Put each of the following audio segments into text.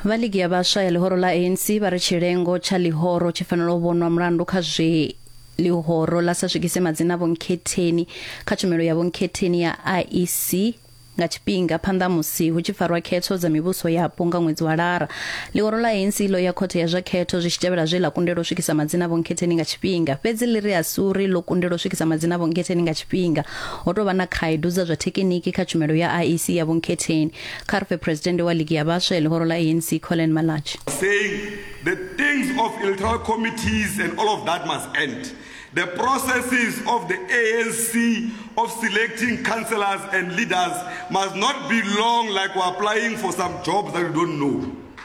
Vha ligi ya vhaswa ya ḽihoro ḽa ANC vha ri tshilengo tsha ḽihoro tshi fanela u vhonwa mulandu kha zwe ḽihoro ḽa sa swikise madzina a vhonkhetheni kha tshumelo ya vhonkhetheni ya IEC nga tshifhinga phanḓa musi hu tshi farwa khetho dza mivhuso yapo nga ṅwedzi wa lara ḽihoro ḽa ANC ḽo ya khothe ya zwa khetho zwi tshi tevhela zwe ḽa kundelwa u swikisa madzina a vhonkhetheni nga tshifhinga fhedzi ḽi ri a si uri ḽo kundelwa u swikisa madzina a vhonkhetheni nga tshifhinga Ho tou vha na khaedu dza zwa thekiniki kha tshumelo ya IEC ya Vhunkhetheni, kha ri fhe Phresidennde wa Ligi ya Vhaswa ya ḽihoro ḽa ANC, Collen Malatji. saying the things of electoral committees and all of that must end. The processes of the ANC of selecting councillors and leaders must not be long like we're applying for some jobs that we don't know.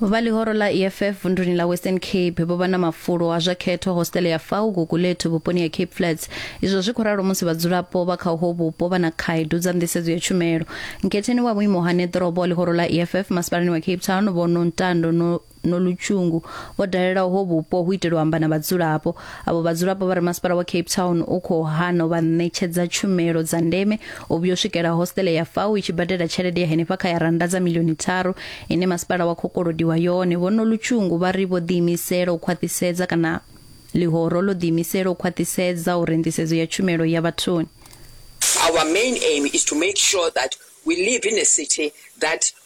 Vha ḽihoro ḽa EFF vunduni ḽa Western Cape vho vha na mafulo a zwa khetho hositele ya Fau Gugulethu vhuponi ha Cape Flats. Izwo zwi khou ralo musi vhadzulapo vha kha uho vhupo vha na khaedu dza nḓisedzo ya tshumelo. Nkhetheni wa vhuimo ha neḓorobo wa ḽihoro ḽa EFF masipalani wa Cape Town Vho Nontando Nolutshungu vho dalela uho vhupo hu itela u amba na vhadzulapo. Avho vhadzulapo vha ri masipala wa Cape Town u khou hana u vha ṋetshedza tshumelo dza ndeme u vhuya u swikela hostele ya fau i tshi badela tshelede ya henefha kha ya rannda dza milioni tharu ine masipala wa khou kolodiwa yone vhono lutshungu vha ri vho ḓiimisela u khwaṱhisedza kana ḽihoro ḽo ḓiimisela u khwaṱhisedza uri nḓisedzo ya tshumelo ya vhathuni Our main aim is to make sure that we live in a city that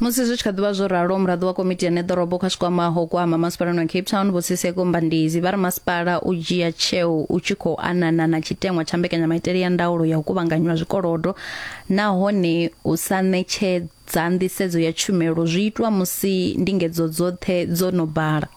musi zwi tshi kha ḓivha zwo ralo muraḓo wa komiti ya neḓorobo kha tshikwamaho kwama masipalani wa cape town vhosiseko mbandizi vha ri masipala u dzhia tsheo u tshi khou anana na tshiteṅwa tsha mbekanyamaitele ya ndaulo ya u kuvhanganywa zwikolodo nahone u sa ṋetshedza nḓisedzo ya tshumelo zwi itwa musi ndingedzo dzoṱhe dzo no bala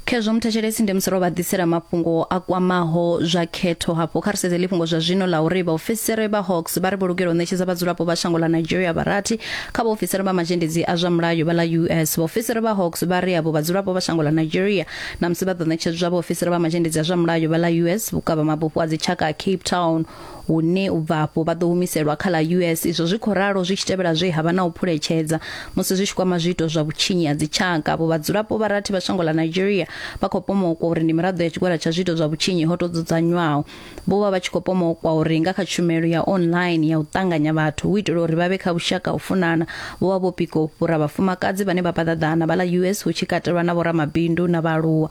khezwo muthetshelesi ndi musoro vha ḓisela mafhungo a kwamaho zwa khetho hafho kha ri sedze ḽifhungo zwa zwino ḽa uri vhaofisiri vha hawks vha ri vho lugela u ṋetshedza vhadzulapo vha shango ḽa nigeria vharathi kha vhaofisiri vha mazhendedzi a zwa mulayo vha ḽa us vhaofisiri vha hawks vha ri avho vhadzulapo vha shango ḽa nigeria na musi vha ḓo ṋetshedzwa vhaofisiri vha mazhendedzi a zwa mulayo vha ḽa us vhukavha mabufho a dzitshaka a cape town hune u bva afho vha ḓo humiselwa kha ḽa US izwo zwi khou ralo zwi tshi tevhela zwe ha vha na u phuletshedza musi zwi tshi kwama zwiito zwa vhutshinyi ha dzitshaka vho vhadzulapo vha rathi vha shango ḽa Nigeria vha khou pomokwa uri ndi miraḓo ya tshigwada tsha zwiito zwa vhutshinyi ho tou dzudzanywaho vho vha vha tshi khou pomokwa uri nga kha tshumelo ya online ya u ṱanganya vhathu hu itela uri vha vhe kha vhushaka u funana vho vha vho pika u fhura vhafumakadzi vhane vha paḓaḓana vha ḽa US hu tshi katelwa na vhoramabindu na vhaaluwa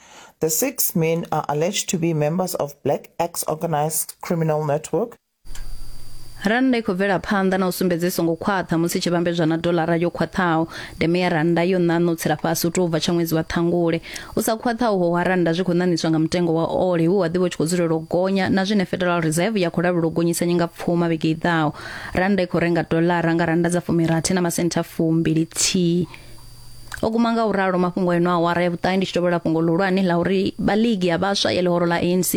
The six men are alleged to be members of Black Axe organized criminal network. rannda i khou bvela phanḓa na u sumbedza i songo khwaṱha musi i tshi vhambedzwa na dolara yo khwaṱhaho ndeme ya rannda yo ṋaṋa u tsela fhasi u tou bva tsha ṅwedzi wa ṱhangule u sa khwaṱhaho ho wa rannda zwi khou ṋaṋiswa nga mutengo wa ole we wa ḓivha u tshi khou dzulela u gonya na zwine federal reserve ya khou lavhelwa u gonyisa nyinga pfuma vhege i ḓaho rannda i khou renga dolara nga rannda dza fumirathi na masentha fumbili thihi o guma nga u ralo mafhungo eno awara ya vhuṱahe ndi tshi tovhela fhungo ḽihulwane ḽa uri vha ligi ya vhaswa ya ḽihoro ḽa anc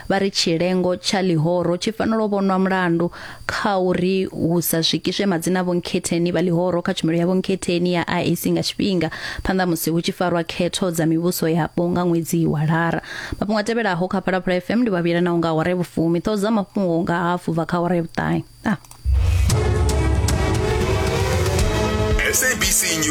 vha ri tshilengo tsha ḽihoro tshi fanela u vhonwa mulandu kha uri hu sa swikiswe madzina a vhonkhetheni vha ḽihoro kha tshumelo ya vhonkhetheni ya iac nga tshifhinga phanḓa musi hu tshi farwa khetho dza mivhuso yapo nga ṅwedzi wa lara mafhungo a tevhelaho kha phalaphala fm ndi vhavhila na u nga awara ya vhufumi ṱhoho dza mafhungo nga hafu bva kha awara ya vhuṱahe ah. SABC News.